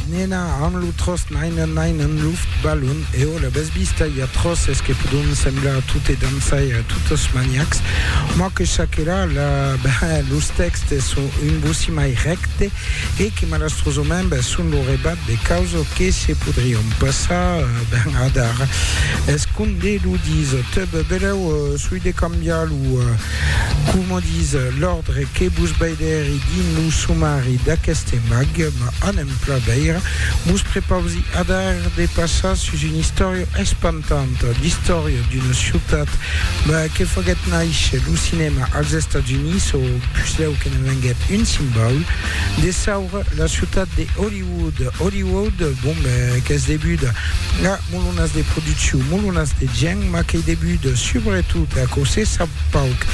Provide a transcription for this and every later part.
Nena, amb lo tròst naina nain en luft, balon, e òla bes vista, i a tròst es que podon semblar a tot e dançar e a tot es maniacs. Moi que chaquela, la, ben, los tèxtes son un bocí mai rècte e que malastrosament, ben, son lo rebat de causa que se podrion passar, ben, adar. Es com de lo dis, teb, belèu, soi de cambiar lo, Coma dis l'òrdre que vos veidèri dins lo somari d'aqueste mag, m'a anem plan veire, vos prepausi adar de passar sus una istòria espantanta, l'istòria d'una ciutat que faguèt nàisher lo cinèma als Estats Units, o puslèu que ne venguèt un simbaul, de saura, la ciutat de Hollywood. Hollywood, bon, qu'es debut a molonas de produccion, molonas de gent, ma qu'ei debut subretot, aquò se sap pauc,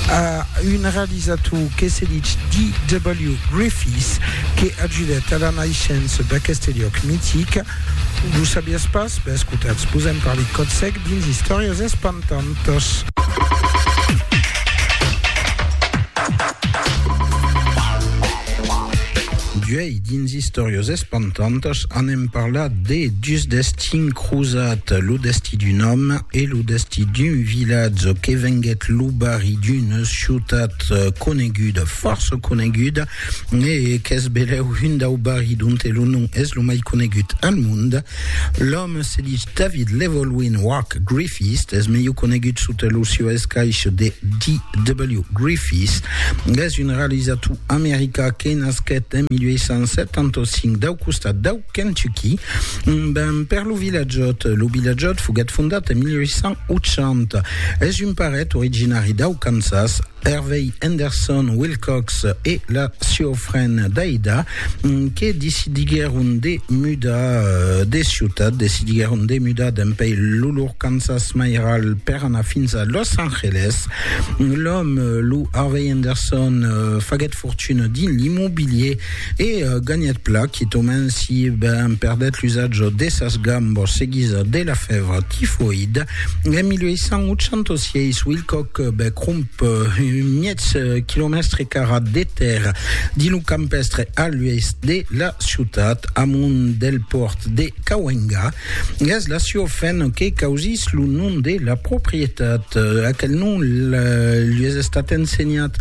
a un realizator que se ditz D.W. Griffiths, que ajudèt a la naishença d'aqueste liòc mitic. Lo sabiás pas? Ben, escotatz, vos en parli còth sec dins Istòrias espantantas. Duei. Dins Istòrias espantantas anem parlat de dus destins crosat, lo destí d'un òme e lo destí d'un vilatge que venguèt lo barri d'una ciutat coneguda, fòrça coneguda, e qu'es belèu un dau barri donte lo nom es lo mai conegut al monde. L'òme se dich David Llewelyn Wak Griffiths, es melhor conegut sota lo sieu escaich de D.W. Griffiths. Es un realizator americà que nasquèt en 1875 dau costat dau Kentucky, ben per lo Vilatjòt. Lo Vilatjòt foguèt fondat en 1880. Es un paret originari dau Kansas, Hervey Henderson Wilcox e la sieu frend Daida que decidiguèron de mudar de ciutat, decidiguèron de mudar dempèi lo lor Kansas mairal per anar fins a Los Angeles. L'òme, lo Harvey Henderson, faguèt fortuna dins l'immobilier E ganhèt pla quitament si ben perdèt l'usatge de sas gambas seguisa de la fèvra tifoïda. En 1886, Wilcock bè cromp un miètz quilomèstre carat de tèrra dins lo campèstre a l'oèst de la ciutat, amont del pòrt de Cahuenga. Gas la Ciofen que causís lo nom de la proprietat. Aquel nom lui es estat ensenhat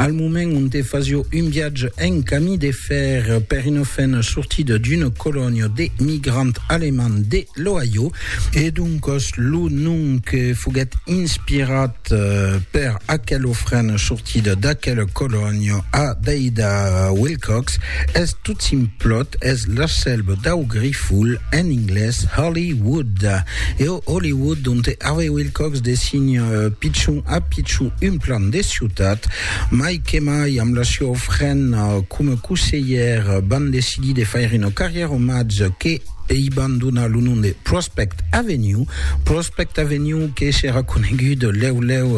al moment onte fasió un viatge en camí de fèr per una fen sortida d'una colònia de migrants alemands de l'Ohio, e doncas lo nom que foguèt inspirat Per aquel ofren sortit d'aquel colòni a Deida Wilcox es tot simplot, es l'asselb dau grifol, en inglés Holly Wood. E o Holly Wood donte Harvey Wilcox design pichon a pichon un plan de ciutat, mai que mai amb la sua ofrena coma coselhèr van decidir de faire una carrièra omatge que, Ei ban donar lo nom de Prospect Avenue, Prospect Avenue que serà conegut lèu lèu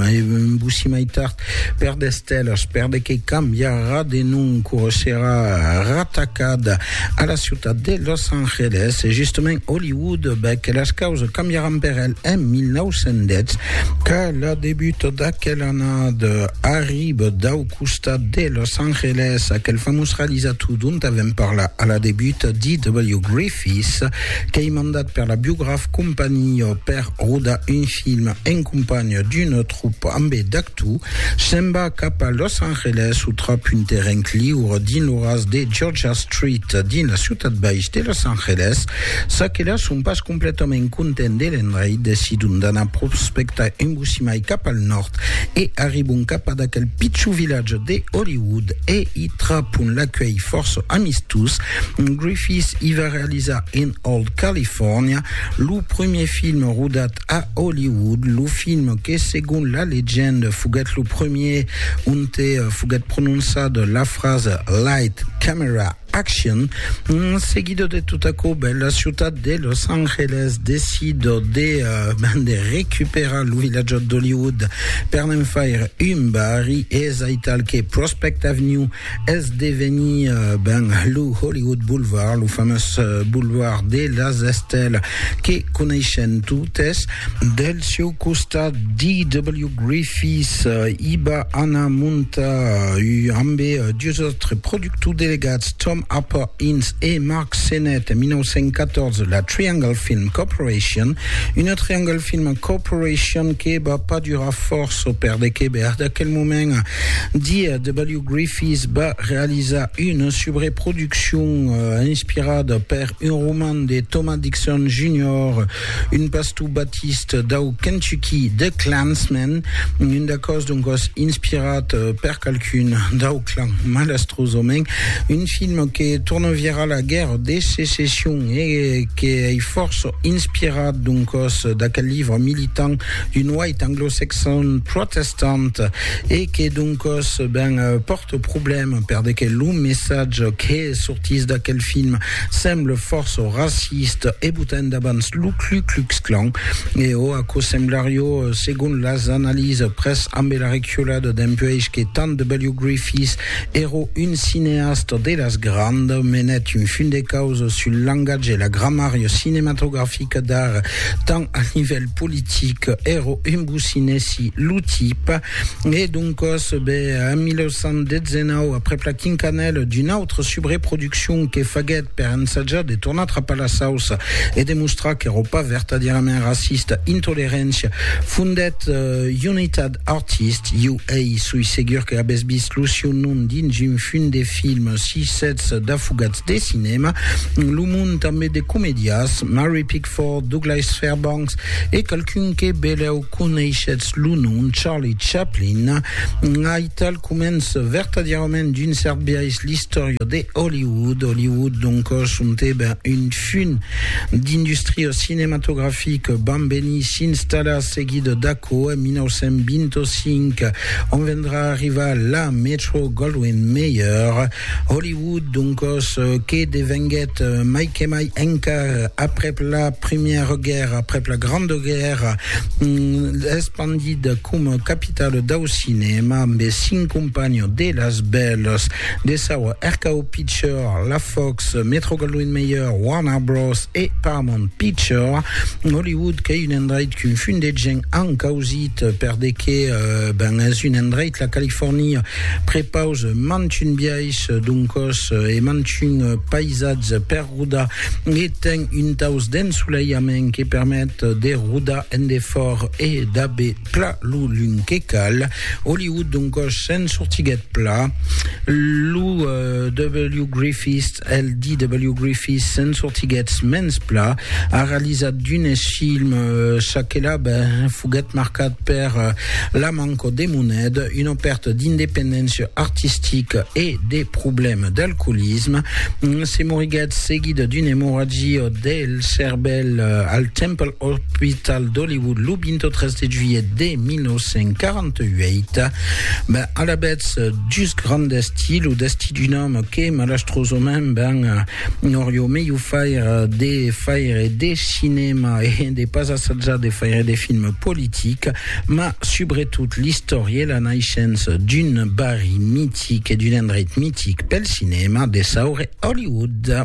e vossi mai tard per de stèlas, per de que cambiarà de nom quò serà ratacat a la ciutat de Los Angeles e justament Hollywood, bèth que las causas cambiaràn per el en 1910, qu'a la debut d'aquel annada arriba dau costat de Los Angeles, aquel famós realizator dont avèm parlat a la debut, D.W. Griffith, qu'ei mandat per la Biograph Company per rodar un film en companha d'una tropa ambé d'actors, se'n va cap a Los Angeles o trap un terren liure dins lo ras de Georgia Street, dins la ciutat baix de Los Angeles, ça que la son pas Completament content de l'endrait, decidon d'anar prospectar un bocí mai cap al nòrd e arribon cap ad aquel pichon vilatge de Hollywood e i trapon l'acuelh fòrça amistós. Griffith i va realizar In Old California, lo premier film rodat a Hollywood, lo film que segon la legenda foguèt lo premier onte foguèt prononçada la frasa Light, Camera, Action. En seguida de tot aquò, ben, la ciutat de Los Angeles decida de, ben, de recuperar lo vilatjat d'Hollywood per ne'n faire un barri, e es aital que Prospect Avenue es devenir, ben, lo Hollywood Boulevard, lo famós boulevard de las estèlas que coneishem totes. Del sieu costat, D.W. Griffith i va anar montar, ambe dus autres productors, Tous delegats Tom Harper Ince e Mark Sennett, 1914, la Triangle Film Corporation, una Triangle Film Corporation que va pas durar fòrça perdeque bèr d'aquel moment dia W. Griffiths va realizar una subreproduccion inspirada per un roman de Thomas Dixon Junior Un pastor batist dau Kentucky, The Klansmen, un dacòs doncas inspirat per qualqu'un dau Klan, malastrosament, un film que torna virar la Guèrra de Secession e que ei fòrça inspirat doncas d'aquel livre militant d'un white anglo-saxon protestant e que doncas ben pòrta problèma per de que lo messatge que sortís d'aquel film Semble fòrça raciste e botain davans lo Klu Klux Klan, e ò aquò semblarió, segon las analises, pres ambe la reculada dempuèish que tant W. Griffith èro un cineasta de las grandes, menèt un fin de causa sul langatge e la gramària cinematografica d'ara tant al nivèl politic, èro un bocinèsi lo tipe. E doncas, be, en 1919, aprèp la quincanèla d'una autra subreproduccion que faguèt per ensajar de tornar trapar la sauça e de mostrar qu'èra pas vertadièrament racista, Intoleréncia fondèt Unitat Artist, UA, soi segur que avètz vist lo sieu nom dins un fum de film, si sètz d'afogats de cinèma, lo mond tanben de comediás, Mary Pickford, Douglas Fairbanks e qualqu'un que belèu. Coneishetz lo nom Charlie Chaplin? Ai tal començ vertadièrament d'un cèrt biais l'istòria de Hollywood. Hollywood, donc, sontèba un fum d'industria cinematografica, vam venir s'installar seguit d'aquò en 1925, ont vendrà arribar la Metro-Goldwyn-Mayer, Hollywood, doncòs, que devenguèt mai que mai encar aprèp la Primièra Guèrra, aprèp la Granda Guèrra, espandida coma capitala dau cinèma amb es cinc companhons de las bèlas de saua RKO Picture, la Fox, Metro-Goldwyn-Mayer, Warner Bros. E Paramount Picture. Hollywood qu'ei un endreit qu'un fum de gent an causit per de que, ben, es un endreit, la Califòrnia, Prepause mantun biais d'un còs e mantun paisatge per rodar e ten un taus d'ensoleiament que permet de rodar en defòrt e d'aver pla lo lung que cal. Au lieu d'un còs sens sortiguet pla, lo W. Griffiths El DW Griffith se'n sortiguèt mens pla, a realizat d'unes films, çò que la ben foguèt marcat per la manca de moneda, una pèrta d'independéncia artistica e de problèmes d'alcoolisme. Se moriguèt seguida d'una emorragia del cervèl al Temple Orpital d'Hollywood lo 23 de juilhet de 1948. Ben, alavetz, just grand destí, lo destí d'un òme que, malastrosament, ben, n'aurió melhor faire de faire de cinèma e de pas assajar de faire de film politic, ma subretot l'istòria e la naishença d'un barri mitic e d'un endreit mitic pel cinèma, de saure Hollywood.